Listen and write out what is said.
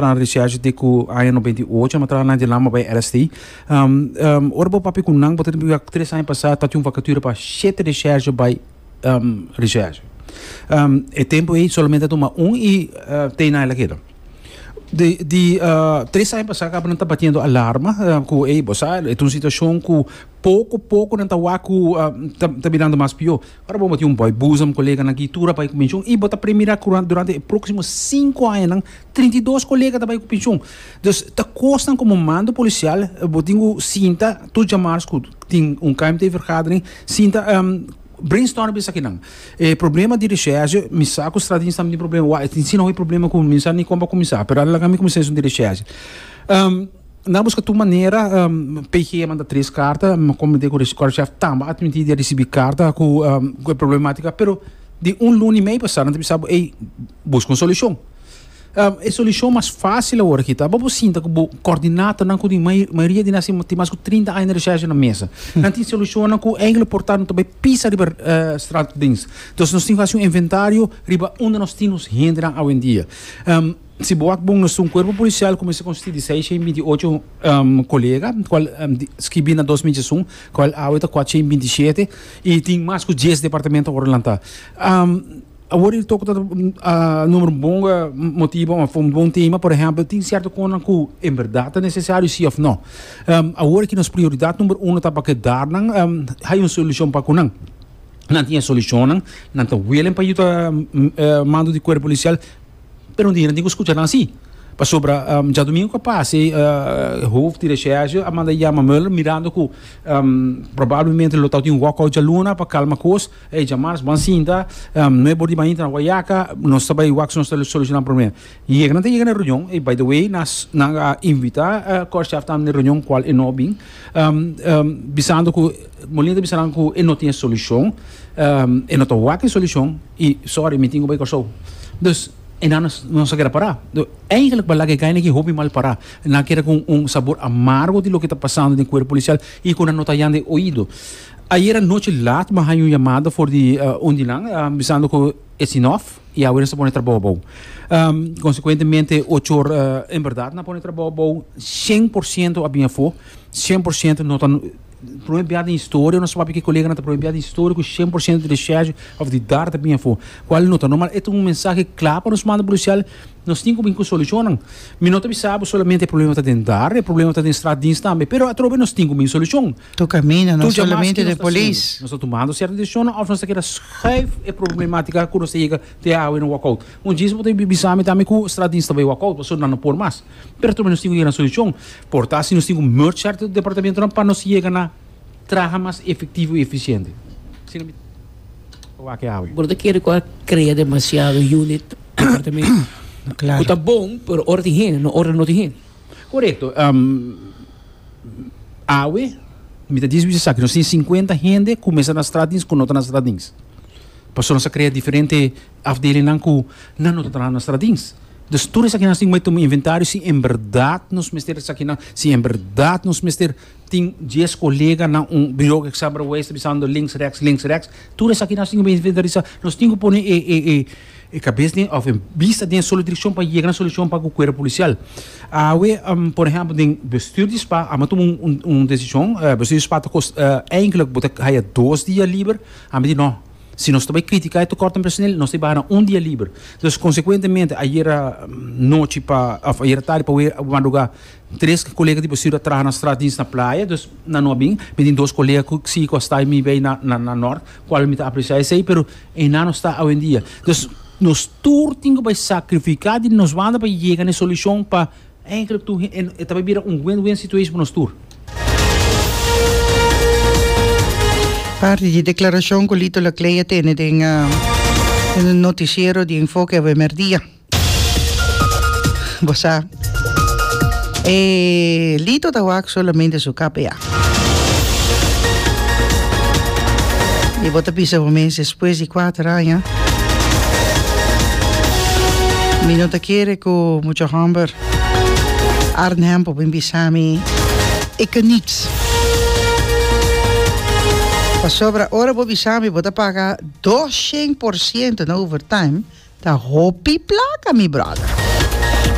Nan recherche di cu aña noventa i ocho nan a traha nan di lama bay RST. Ora bo papia cu nan bo ta tene biblia tres aña pasa ta tin un vacature pa shete recherche bay recherche. E tempo ey solamente a tuma un y tey nan el a keda. Di tres aña pasa caba nan ta batiendo alarma cu ey bo sa e ta un situacion cu poco poco nan ta wak cu ta ta birando mas pio. Ora bo tin un boy boezem koleganan aki tur a bai ku penshun i bo ta premirá ku durante e próksimo sinku añanan trinta i dos kolega ta bai ku penshun. Dus ta kosnan komo mando polisial bo tin ku sinta tur djamars ku tin un kmt vergadering sinta brainstormen esakinan. E problema di reshèrsje mi sa ku Straddins tambe tin problema. Wak e tin sin hopi problema ku mi sa ni kon pa kuminsá pero a laga mi kuminsá esun di reshèrsje. Na buska tur manera, PG a manda tres karta, Comité Correchef tambe a tmintí di a risibí karta ku e problemátika, pero di un luna i mei pasá nan ta bisa bo, ey, buska un solushon. E solushon mas fásil awor aki ta, bo por sinta ku bo kòrdinatonan ku di mayoria di nan asina tin mas ku trinta aña di rechèsha na mesa. Nan tin solushonnan ku enkele por ta, nan ta bai pisa riba Straat Odense. Entonces nos tin ku hasi un inventario riba unda nos tin nos hendenan awendia. Si bo wak bon esun kuerpo polisial ku mester konstitui di seis shen binti ocho kolega kual skibí na dos michi esun kual awe ta kuat shen binti shete i tin mas ku dies departamento ora lanta awor i tok ta numero un bon motibu òf un bon tema por ehèmpel tin sierto kosnan ku en bèrdat ta nesesario si òf nò awor aki nos prioridat numero uno ta pa kedat nan haya un solushon pa ku nan nan tin e solushonnan nan ta welen pa yu ta mando di kuerpo polisial. Pero no tin hende tin ku skucha nan si. Pasobra djadumingu ku a pasa ei hof di reshèrshe a manda yama Mueller mirando ku probablemente lo tabata tin un wòkout djaluna pa kalma kos. Ey djamars ban sinta no e bor di ban inter na wayaka nos ta bai wak su nos ta solushona promem. Yega nan ta yega na e reunion ey by the way nan a invita Kòrshav tambe na e reunion kual e no bin bisando ku Molina ta bisa nan ku e no tin e solushon e no ta wak e solushon. I sorry mi tin ku bai Kòrsou. Dus e nan nos a keda pará. Eigenlijk pa laga e kaina aki hopi mal pará. E nan a keda ku un sabor amargo di loke ta pasando den kuerp polisial i ku nan no ta yanda e oido. Ayer anochi lat mi a haña un yamada for di un di nan bisando ku it's enough i awe nos ta pone trabou abou. Konsekuentemente ocho or en bèrdat nan a pone trabou abou. Shen por siento a bin afó. Shen por siento no ta. Prome biaha den historia nos papia ki koleganan ta prome biaha den historia ku shen por shento di deshecho of di dar ta bin afo kual no ta normal e ta un mensahe kla pa nos manda polisial nos tin ku bin ku solushonnan mi no ta bisa bo solamente e problema ta den dar e problema ta den strat dins tambe pero atrobe nos tin ku bin solushon Tur caminda no solamente den polis. nos ta tumando certo decisionnan of nos ta keda schuif e problematica ku nos ta yega te awe na walkout un djis bo ta bisa mi tambe ku strat dins ta bai walkout pasobra nan no por mas. Pero tambe nos tin cu yega na solucion por ta si nos tin cu merge cierto departamentonan pa nos yega na traha mas efectivo y eficiente. Asina mi ta wak awe. Bo no ta kere cu a crea demasiado unit, departamento, cu ta bon, pero ora tin hende no ora no tin hende. Corecto. Awe mi ta dici bo esaki, nos tin cincuenta hende cu mester na straat dins cu no ta na straat dins. Pasobra nos a crea diferente. Afdelingnan ku nan no ta traha nos stradins. Dus tur esakinan tin mei tuma inventario si en berdad nos mester esakinan, si en berdad nos mester tin dies kolega na un biro Example Waze ta bisando links reks links reks. Tur esakinan tin kuba inventarisá. Nos tin ku pone e e e e kabes den òf e bista den un solo direkshon pa yega na solushon pa ku kuerpo polisial. Awe por ehèmpel den bestür di spa ami a tuma un un desishon, bestür di spa ta kos èinklik bo ta haya dos dia liber, ami di no. Si nos ta bai critica e tecort en personel nos ta bai hana un dia liber. Entonces consecuentemente ayera nochi pa of ayera tardi pa madruga tres colega di Bosio a traha na straat Dienst na Playa dus na no a bin. Mi tin dos colega cu sigui cu a sta mi bay na na Nort cual mi ta aprecia esey pero eynan no sta awendia. Entonces nos tur tin cu bay sacrifica di nos banda pa yega na e solucion pa. Eigenlijk tu he e ta bay bira un win-win situation pa nos tur. Parti di declaracion cu Lito Laclay a tene den e noticiero di Enfoke awe merdia. Bo sa, e Lito ta wak solamente su kap ea. Y bo ta bisa bo mes despues di cuater aña mi no ta kere cu mucha homber Arnhem por bin bisa mi e ka niks. Pasobra ora bo bisa mi bo ta paga doshen por ciento na overtime ta hopi placa mi brother.